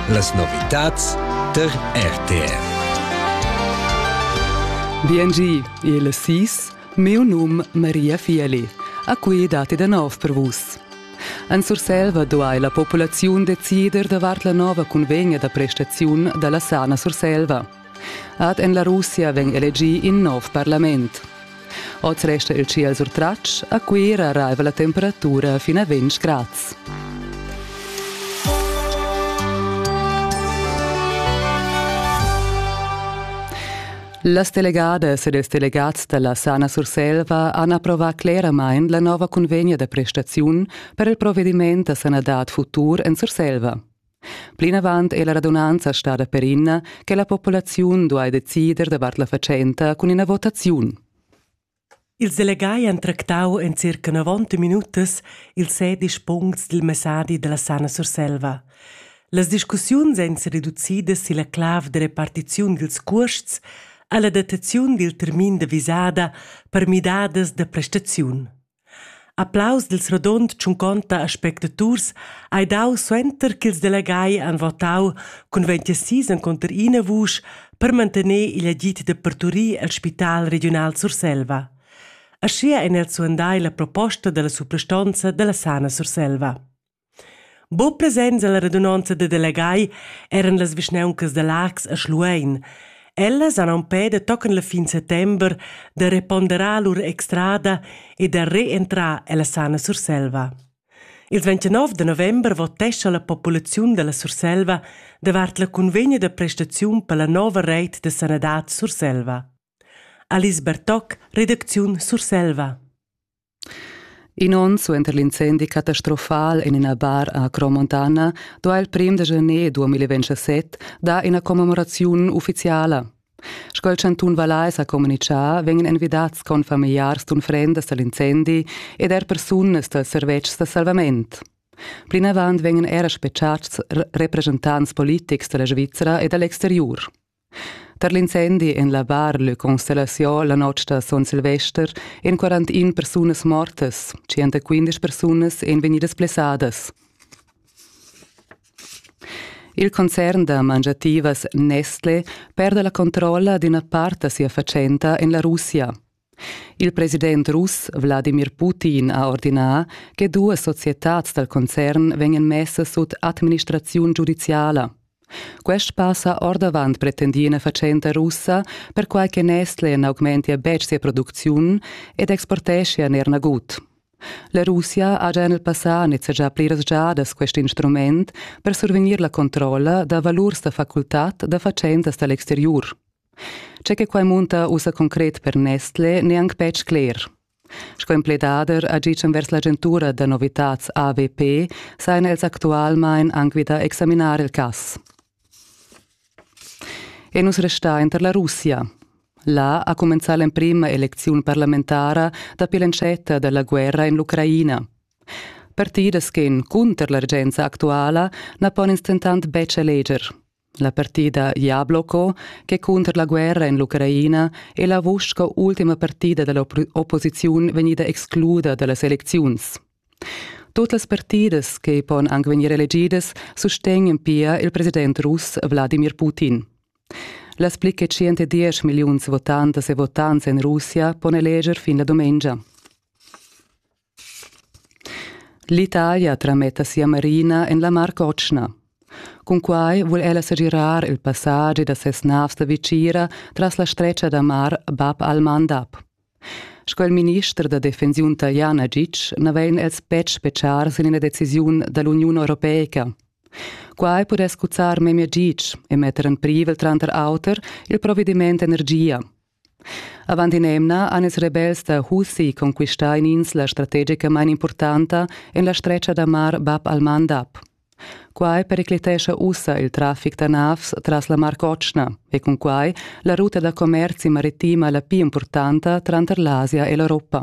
Las novitads der RTR. BNG, il SIS, meu num Maria Fieli, a cui dati da nov per vus. En Surselva duai la populaziun decider davart la nova cunvegna da prestaziun da la sana Surselva. Ad en la Russia vegn elegì in nov parlament. Oz resta il ciel surtratg, a Cuira arriva la temperatura fin a 20 grads. Las delegadas ed ils delegats dalla Sana Surselva han approvà cleramain la nova cunvegna da prestaziun per il provediment da sanadad futur en Surselva. Plinavant è la radunanza stada perina che la populaziun duai decider davart la fatschenta cun ina votaziun. Ils delegai han tractau en circa novanta minutas ils sedisch puncts dil messadi dalla Sana Surselva. Las discussiuns ein sereducidas silla clav da repartiziun dils cuosts alla dataziun dil termin da visada per midadas da prestaziun. Applaus dil rodund tschunconta a spectaturs ei dau suenter ch'ils delegai han votau cun ventisis encunter ina vusch per mantener igl agid da parturir el spital regiunal Surselva. Aschia ein els suandai la proposta dalla suprastonza dalla Sana Surselva. Buc presents ella radunonza da delegai eran las vischnauncas da Laax e Schluein. Ellas han empè da tochen la fin settember da reponderar lur extrada e da reentrar ella sana Surselva. Il 29 da november votescha la populaziun dalla Surselva davart la cunvegna da prestaziun per la nova reit da sanadad Surselva. Alice Bertoc, redacziun Surselva. In onn suenter l'incendi catastrofal en ina bar a Cromontana duha il prim da janer 2027 dar ina commemoraziun uffiziala. Sco il chantun Vallais ha communitgà, vegnan envidats confamiliars d'unfrendas dal incendi ed er persunas dals servetschs da salvament. Plinavant vegnan era spetgads representants politics da la Svizra e da l'exteriur. Tar l'incendi en la Bar Le Constellation la notg da son Silvester èn 41 persunas mortas, 115 persunas èn vegnidas blessadas. Il concern da mangiativas Nestle perda la controlla d'ina part da sia fatschenta en la Russia. Il president russ Wladimir Putin ha ordinà che duas societads dal concern vegnan messas sut administraziun giudiziala. Quest pass ha ordavant pretendì ina fatschenta russa, perquai che Nestle n'augmentia betg sia producziun ed exporteschia er nagut. La Russia haja en il passà nizzegià pliras giadas quest instrument per survegnir la controlla da valurs da facultad da fatschentas da l'exteriur. Tge che quai munta ussa concret per Nestlé n'è anc betg cler. Sco empledader agitschan vers l'agentura da novitads AWP sajan els actualmain anc vi da examinar il cass. E nus restain tar la Russia. Là ha cumenzà l'emprima elecziun parlamentara dapi l'entschetta da la guerra en l'Ucraina. Partidas ch'en cunter la regenza actuala na pon ins dentant betg eleger. La partida Jabloko, che cunter la guerra en l'Ucraina è la vusch sco ultima partida da l'opposiziun vegnida excluda da las elecziuns. Tut las partidas che pon anc vegnir elegidas sustegnan pia il president russ Wladimir Putin. Las pli che 110 milliuns votantas e votants en Russia pon eleger fin la dumengia. L'Italia trametta sia marina en la Mar Cotschna. Cunquai vul ella segirar il passagi da ses navs da vitgira tras la stretga da mar Bab al-Mandab. Sco il minister da defensiun italian Agic n'avain els betg spetgar sin ina decisiun da l'Uniun europeica. Quai pudess cuzzar memia gitg e metter en privel tranter auter il provediment energia. Avant in'emna han ils rebels da Husi conquistà in'insla strategicamain impurtanta en la stretga da mar Bab al-Mandab. Quai periclitescha ussa il traffic da navs tras la Mar Cotschna e cunquai la ruta da commerzi maritima la pli impurtanta tranter l'Asia e l'Europa.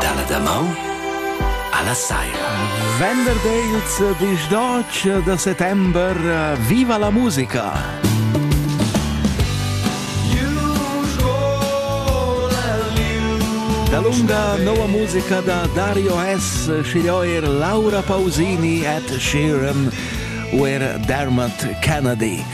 Dalla damaun alla saira. Venerdì il 18 da settembre, viva la musica! Da lunga nova musica da Dario Hess, scigliò er Laura Pausini et Sheeran, er Dermot Kennedy.